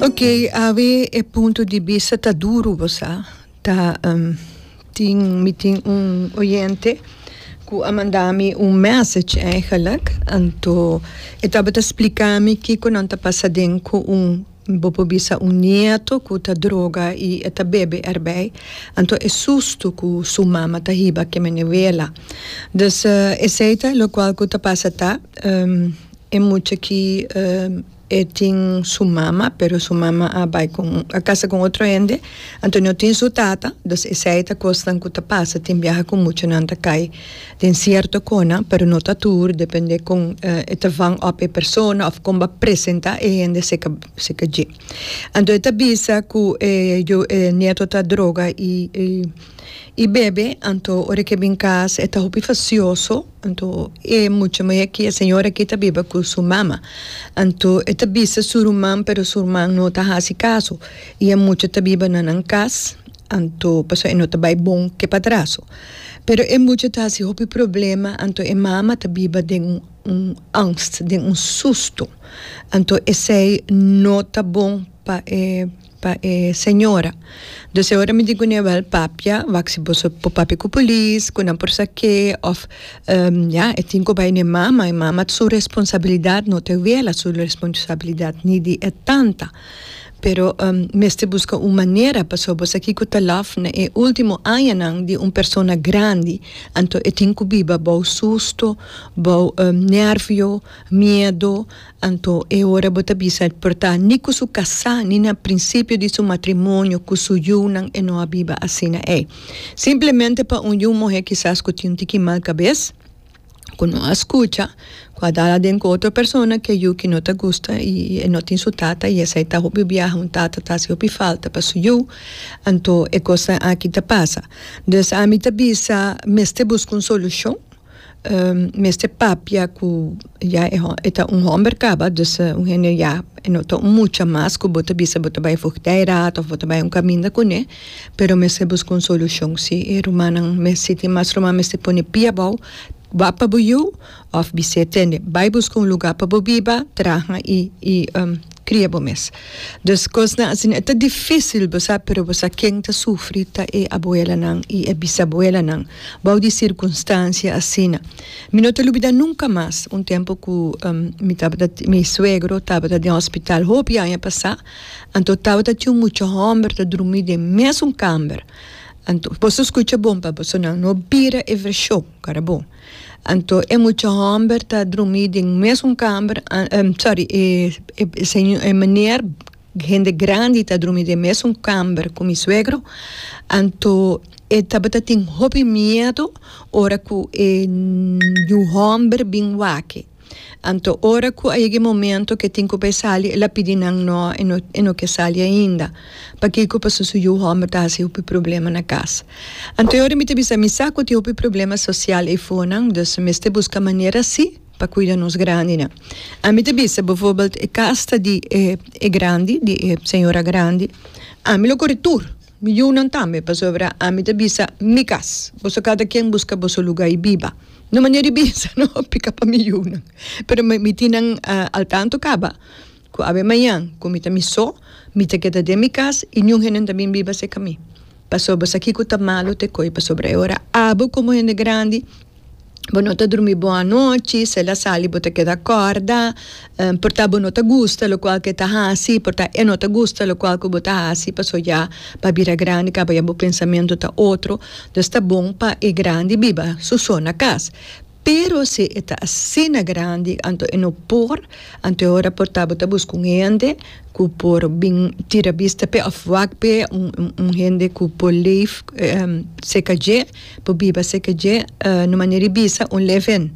Oke awe e punto di bista ta duru bo sa ta tin mi tin un oyente ku a manda mi un message aigelik anto e tabata splika mi kiko nan ta pasa den ku un Bo por bisa un nieto cu ta droga y e ta bebe erbij, anto e susto cu su mama ta hiba keme n'e wela. Dus esey ta locual cu ta pasa ta, e mucha ki e tin su mama pero su mama a bay con, a casa con otro hende, anto no tin su tata, dus esey ta cosnan cu ta pasa tin biaha cu muchanan ta cay. Den cierto cona, pero no ta tur, depende con e ta vang op e persona of con ba presenta e hende seca seca dje. Anto e ta bisa cu e yo e nieto ta droga y y bebe, anto ora ke bin cas e ta hopi facioso, anto e mucha muhe aki, e señor aki ta biba cu su mama, anto e ta bisa su ruman pero su ruman no ta haci caso y e mucha ta biba na nan cas. Anto pasobra e no ta bai bon ke padraso. Pero e mucha ta hasi hopi problema, anto e mama ta biba den un angst, den un susto. Anto esei no ta bon pa e pa e señora. Dus e ora mi di kune, Wèl, papia, wak si boso por papia ku polis, ku nan por sa ke, òf ya e tin ku bai na e mama, e mama su responsabilidat no ta wèl a su responsabilidat ni di e tanta. Pero mester buska un manera pasobra sa kiko ta laf na e ultimo añanan di un persona grandi, anto e tin ku biba bou susto, bou nervio, miedo, anto e ora bo ta bisa el por ta ni ku su kasá ni na prinsipio di su matrimonio ku su yunan e no a biba asina ei. Simplemente pa un yu muhé kisas ku tin un tiki mal kabes. ku no a skucha, ku a dal aden ku otro persona ke yu ku no ta gusta i e no tin su tata i esei ta hopi biaha un tata ta hasi hopi falta pa su yu, anto e kosnan aki ta pasa. Des ami ta bisa mester buska un solushon, mester papia ku ya e e ta un hòmber kaba, dus un hende ya e no ta un mucha mas ku bo ta bisa bo ta bai fugi dei rat òf bo ta bai un kaminda kuné. Pero mester buska un solucion. Si e rumannan mes si tin mas ruman mester pone pia abou, wak pa bo yu of bisé tende. Bai buska un lugar pa bo biba, traha y y cria bo mes. Dus cosnan asina e ta dificil bo sa, pero bo sa ken ta sufri ta e abuelanan y e bisabuelanan bou di circunstancia asina. Mi no ta lubida nunca mas un tempo cu mi tabata mi suegro tabata den hospital hopi aña pasa Anto tabata tin un mucha homber ta drumi den mesun kamber. Anto boso skucha bon pa boso nan no bira e vershon para bo. Anto e mucha homber ta drumi den mesun kamber, sorry, e meneer, hende grandi ta drumi den mesun kamber ku mi suegro. Anto e tabata tin hopi miedu ora ku e yu homber bin wak. Anto ora cu a yega e momento ke tin cu pa e sali el a pidi nan no e no e no ke sali ainda. Pakico? Paso su yu homber ta haci hopi problema na cas. Anto e ora mi ta bisa mi sa cu tin hopi problema social eifonan dus mester busca manera si pa cuida nos grandinan. Ami ta bisa bvoorbeeld e cas ta di e e grandi di e señora grandi ami lo cori tur. Mi yunan tambe, pasobra ami ta bisa, Mi kas, boso kada ken buska boso luga i biba. No manera di bisa, no apliká pa mi yunan. Pero mi tin nan al tantu kaba ku awe maña ku mi ta mi so, mi ta keda den mi kas i niun hende no ta bin biba serka mi. Pasobra bo sa kiko ta malu te ko'i, pasobra e ora abo komo hende grandi, Bo no ta drumi bon anochi, si el a sali bo ta keda kòrda, por ta bo no ta gusta lokual ku e ta hasi, por ta e no ta gusta lokual ku bo ta hasi, pasobra ya bo a bira grandi kaba ya bo pensamentu ta otro, entonces ta bon pa e grandi biba su so na kas. Pero si e ta asina grandi anto e no por, anto e ora por ta bo ta buska un hende ku por bin tira bista p'e òf wak p'e, un hende ku por leef seka dje. Por biba seke dje no manera di bisa un live-in.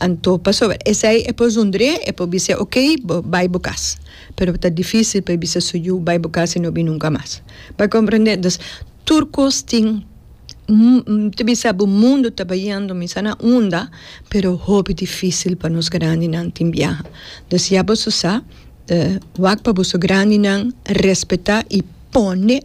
Anto pasobra esei e por zundr'é, e por bis'é ok bo bai bo kas. Pero ta difísil pa e bisa su yu bai bo kas i no bin nunka mas. Bo a komprendé? Entonces tur kos tin mi ta bisa bo mundu ta bayendo mi sa na unda pero hopi difísil pa nos grandinan tin biaha. Entonces ya boso sa wak pa boso grandinan respetá i pone